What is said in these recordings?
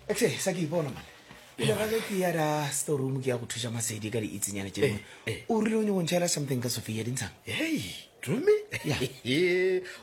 Actually, sa ke ipona mane pele ga ke ya da storeroom ke ya go thuša masedi ka diitsenyana tše dingwe eh, eh. o rile o nyoko ntšhaela something ka sophia dintshang rome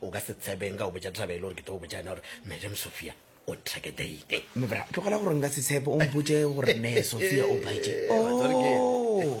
o ka se tshebeng ka go botša taba e le gore ke tlo go botša ena gore madam sophia o nthake daine eh, mebra tlogela gore nka se tshepe o mpotse gore me sophia o baetse oh.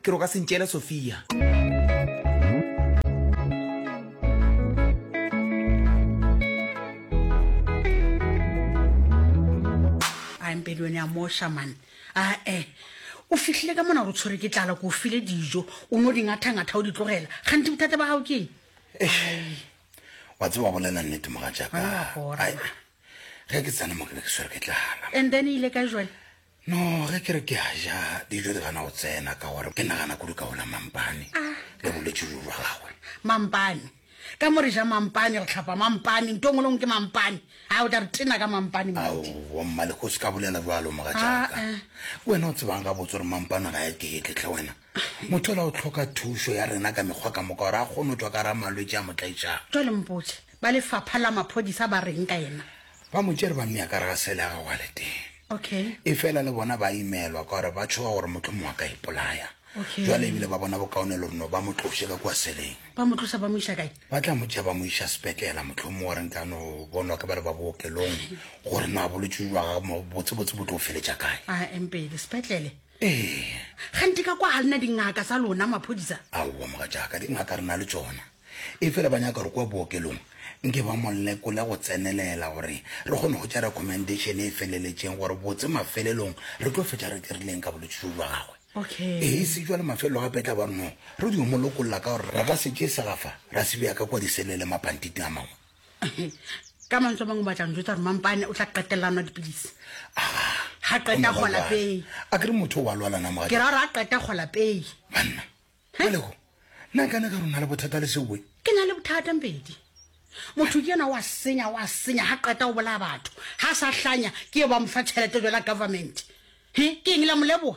Ke re o ka se ntšeele Sophia. pedi one a mo shaman ae eh. o fihlile ka mona gore o tshwere ke tlala ko o file dijo o ne o dingathangatha o di tlogela gante bothata ba gago keng eh, wa tse wa bolela nnete moga jaaka ge ke tsena mo ke be ke tshwere ke tlala and then e ile ka jone No ge ke re ke a ja dijo di gana go tsena ka gore ke nagana kudu ka ona mampane ah. le bolwetse jo jwa gagwe mampane ka mo re ja mampane re tlhapa mampane nto ngwe lengwe ke mampane a o tla re tena ka mampane mmaleko o se ka bolela jalo moga jaaka ah, eh. wena o tsebang ga botse gore mampane ga ya keetletlhe wena Motho ola o hloka thušo ya rena ka mekgwa ka moka gore a kgone go tšwa ka ra malwetši a mo tlaetšago. Jwale mpotše, ba lefapha la maphodisa ba reng ka yena? Ba mo tšere ba mmea ka re ga sele ya gagwe a le teng. Okay. Efela le bona ba imelwa ka gore ba tšhoga gore mohlomongwe a ka ipolaya. Okay. Jwale ebile ba bona bokaone le reno ba mo tloše ka kua seleng. Ba mo tlosa ba mo iša kae? Ba tla mo tšea ba mo iša sepetlela mohlomongwe gore nka no bonwa ke ba le ba bookelong gore no a bolwetši jwa gagwe botsebotse bo tlo feletša kae. A empele sepetlele? ee gante ka kwa ga lena dingaka sa lona maphodisa aowa moga jaaka dingaka re na le tsona e fela ba nyaka gore kwa bookelong nke ba molekole go tsenelela gore re kgone go tša recommendation e feleletšeng gore botse mafelelong re tlo fetša re dirileng ka bolwetse jo jwa gagwe okay ee se jwa le mafelelo gape tla ba re no re dio molokolola ka gore re ka se tše segafa ra se bea ka kwa diselele mapantiting a mangwe ka mantswe a mangwe batla ntho tsa gore mampane o tla qetelela nwa dipilisi ga qeta kgola pei a kere motho o ba lwalana mo ke ra gore a qeta kgola pei banna aleko nna ka ne ka rona le bothata le seoe ke na le bothata mpedi motho ke yena wa senya wa senya ga qeta o bolaya batho ga sa hlanya ke e ba mofa tšhelete jela government he ke eng la moleboa